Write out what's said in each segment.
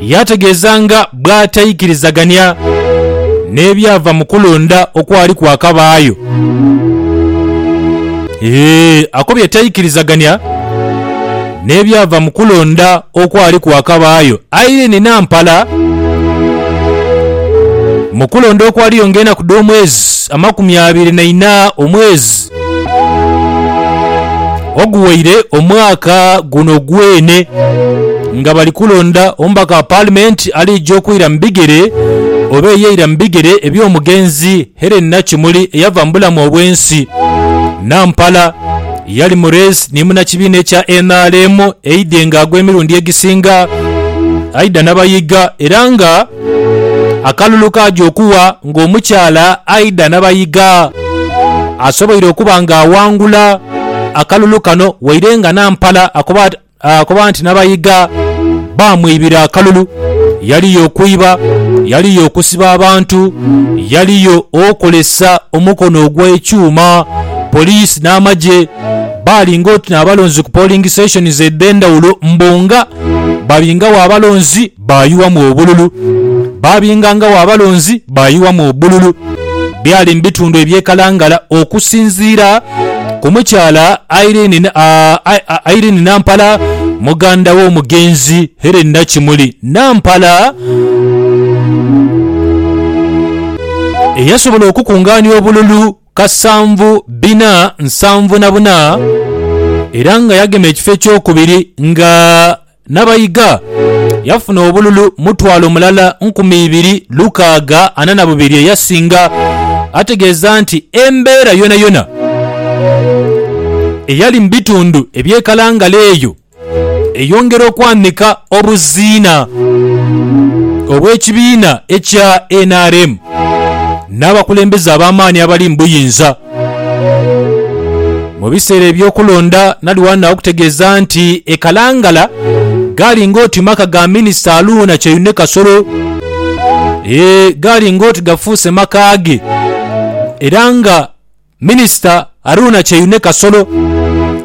Yaategeeza nga bw'ataikirizagania n'ebyava mu kulonda okwali kwakabaayo. Ee, akobye taikirizagania n'ebyava mu kulonda okwali kwakabaayo. Irene Nampala, Mu kulonda okwaliyo ng'enaku dh'omwezi amakumi abiri na ina omwezi, Oguwaire omwaka guno gwene nga bali kulonda omubaka wa paalimenti alija okwira mu bigere oba eyeira mu bigere eby'omugenzi Hellen Nakimuli eyava mu bulamu obw'ensi. Nampala yali mu reesi ni munnakibiina ekya nrm eidhe nga agw'emirundi egisinga aidha nabayiga era nga Akalulu kaja okuwa ng'omukyala Aidah Nabayiga asoboire okuba nga awangula akalulu kano waire nga Nampala akoba nti Nabayiga baamwibira akalulu, yaliyo okwiba, yaliyo okusiba abantu, yaliyo okozesa omukono ogw'ekyuma, poliisi n'amagye baali ng'oti n'abalonzi ku polling stations edh'endhawulo mbu nga babingagho abalonzi. baayughamu obululu, baabingangagho abalonzi baayughamu obululu. Byali mu bitundu eby'ekalangala okusinziira ku mukyala Irene Nampala, muganda w'omugenzi Hellen Nakimuli Nampala, eyasobola okukungaania obululu kasanvu bina nsanvu na buna era nga yagema ekifo ekyokubiri nga Nabayiga yafuna obululu mutwalo mulala nkumi ibiri lukaaga ana na bubiri eyasinga, ategeeza nti embeera yonayona eyali mu bitundu eby'e Kalangala eyo eyongera okwanika obuziina obw'ekibiina ekya nrm n'abakulembeze ab'amaani abali mu buyinza. Mu biseera eby'okulonda nali wano naokutegeeza nti e Kalangala gali ng'oti maka ga minisita Aluuna Kyeyune Kasolo. Ee, gali ng'oti gafuuse maka ge era nga minisita Aruuna Kyeyune Kasolo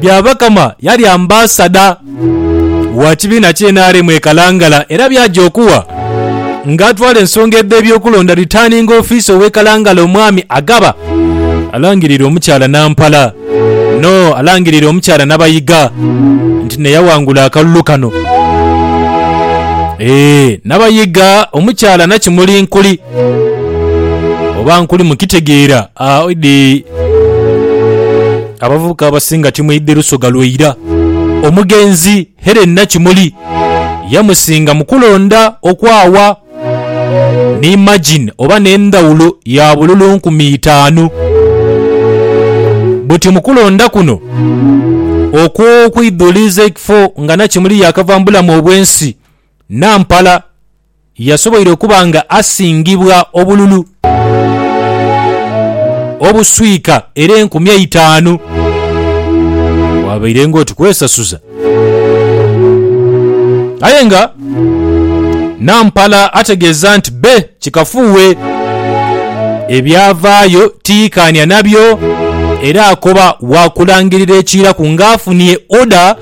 Byabakama yali ambasada wa kibiina ki nrm e Kalangala era byaja okuwa nga atwala ensonga edh'ebyokulonda Returning Officer ow'e Kalangala Omwami Agaba alangirira omukyala Nampala no alangirira omukyala Nabayiga nti neyawangula akalulu kano. Eeh Nabayiga, omukyala Nakimuli Nkuli Oba nkuli mukitegeera? Ah, idi. Abavubuka abasinga timwidhi lusoga lwe ira. Omugenzi Helen Nakimuli yamusinga mu kulonda okwaawa ni margin oba n'endhawulo ya bululu nkumi itaanu. Buti mu kulonda kuno okw'okwidhuliiza ekifo nga Nakimuli yaakava mu bulamu obw'ensi, Nampala. Yasoboire okuba nga asingibwa obululu obuswika era enkumi eitaanu bwabaire ng'oti kwesasuza. Aye nga Nampala ategeeza nti bbe kikafuuwe, ebyavaayo tiyikaanya nabyo era akoba waakulangirira ekiiraku ng'afunie oda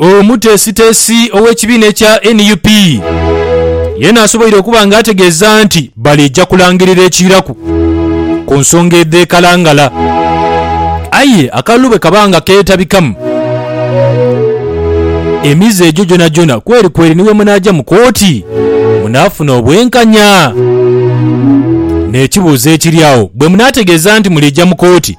Omuteesiteesi ow'ekibiina ekya nup yeena asoboire okuba nga ategeeza nti baleija kulangirira ekiiraku ku nsonga edh'e Kalangala aye akalulu bwe kaba nga keetabikamu, emize egyo gyonagyona kwerikweri ni bwemunaaja mu kooti munaafuna obwenkanya. N'ekibuuzo ekiri agho, bwemunaategeeza nti muliija mu kooti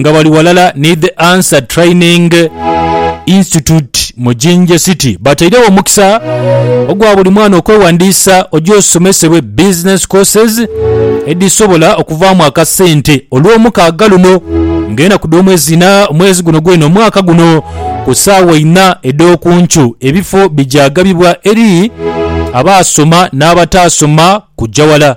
nga bali walala ni The Answer Training Institute mu Jinja City batairegho omukisa ogwa buli mwana okwewandiisa oje osomesebwe business courses edhisobola okuvaamu akasente olw'omukaaga luno ng'enaku dh'omwezi ina omwezi guno gwena omwaka guno ku saawa ina edh'oku nkyo ebifo bijagabibwa eri abaasoma n'abataasoma kujja wala.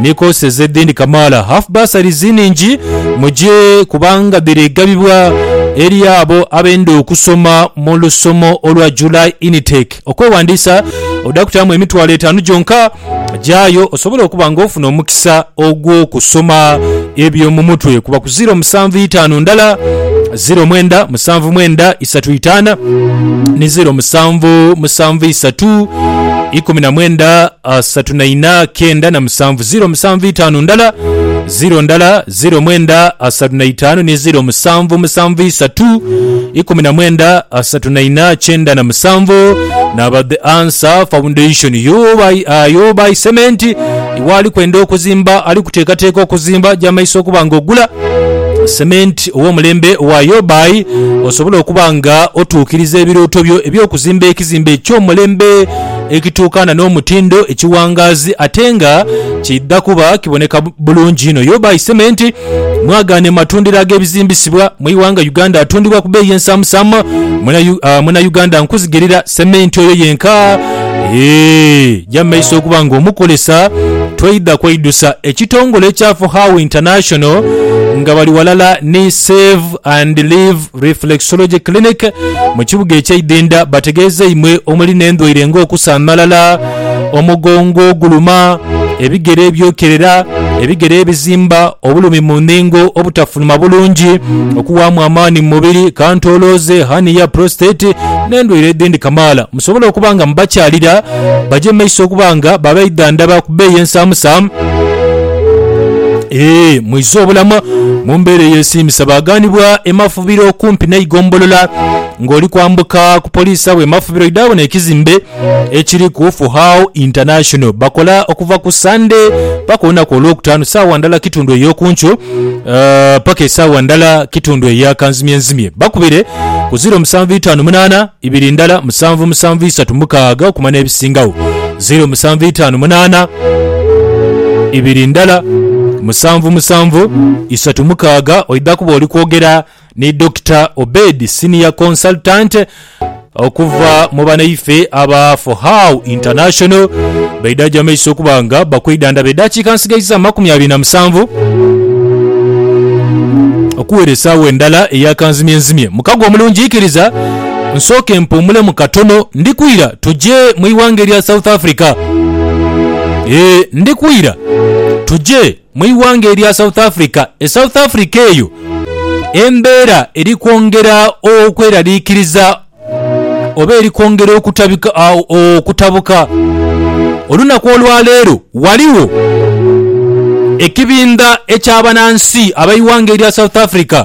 Ni courses edhindi kamaala half bursaries nhingi mugye kubanga dhiri gabibwa eri abo abenda okusoma mu lusomo olwa July Initake. Okwewandiisa odha kutaamu emitwalo etaanu gyonka. Gyayo osobole okuba nga ofuna omukisa ogw'okusoma ebyomumutwe kuba ku ziro musanvu itaanu ndala, ziro mwenda musanvu mwenda isatu itaana ni ziro musanvu musanvu isatu ikumi na mwenda. asatu na ina kenda na musanvu ziro musanvu itano ndala ziro ndala ziro mwenda asatu na itano ni ziro musanvu musanvu isatu ikumi na mwenda asatu na ina kyenda na musanvu naba the answer foundation yobai uh, yobai cement iwe ali kwenda okuzimba ali kuteekateeka okuzimba jamaiso okuba nga ogula cement ow'omulembe owa yobai osobola okuba nga otuukiriza ebirooto byo eby'okuzimba ekizimbe eky'omulembe ekituukana n'omutindo ekiwangaazi ate nga kiidha kuba kiboneka bulungi inho. Yubai Cement mwagaano e matundiro ag'ebizimbisibwa mu ighanga Uganda atundibwa ku beeyi ensaamusaamu. Munauganda nkuzigirira sementi oyo yenka eja mu maiso okuba ng'omukozesa toidha kweidusa. Ekitongole ekya Fuhau International nga bali ghalala ni Save and Live Reflexology Clinic mu kibuga ekye Idinda bategeeza imwe omuli n'endwaire nga okusanhalala, omugongo oguluma, ebigere ebyokerera, ebigere ebizimba, obulumi mu nhingo, obutafuluma bulungi, okuwaamu amaani mu mubiri, kantolooze, hernia, prostate n'endwaire edhindi kamaala. musobole okuba nga mubakyalira baje mu maiso okuba nga babaidhandhaba ku bbeeyi ensaamusa. Ee, mwizze obulamu mu mbeera eyeesiimisa. Baaghanibwa e Mafubiro okumpi n'eigombolola. Ng'oli kwambuka ku poliisi agho e Mafubiro oidha bona ekizimbe ekiriku Fuhao International. Bakola okuva ku Sande paka olunaku Olwokutaanu saawa ndala kitundu ey'oku nkyo eh, paka esaawa ndala kitundu eya kanzimyenzimye. Bakubire ku ziro musanvu itaanu munaana ibiri ndala musanvu musanvu isatu mukaaga okuma n'ebisingagho, zeiro musanvu itaanu munaana, ibiri ndala musanvu musanvu isatu mukaaga. Oidha kuba oli kwogera ni Dokita Obedi, Senior Consultant okuva mu banaife aba For How International beidhaja mu maiso okuba nga bakwidhandhaba edaakiika nsigaiza amakumi abiri na musanvu okuwera esaawa endala eya kanzimyenzimye. Mukago omulungi, ikiriza. Nsooke mpuumulemu katono. Ndi kwira tuje mu ighanga erya South Africa. Ee, ndi kwira tuje mu ighanga erya South Africa. E South Africa eyo embeera eri kwongera okweraliikiriza oba eri kwongera okutabika, a, okutabuka. Olunaku olwa leero ghaligho ekibindha eky'abanansi ab'eighanga erya South Africa,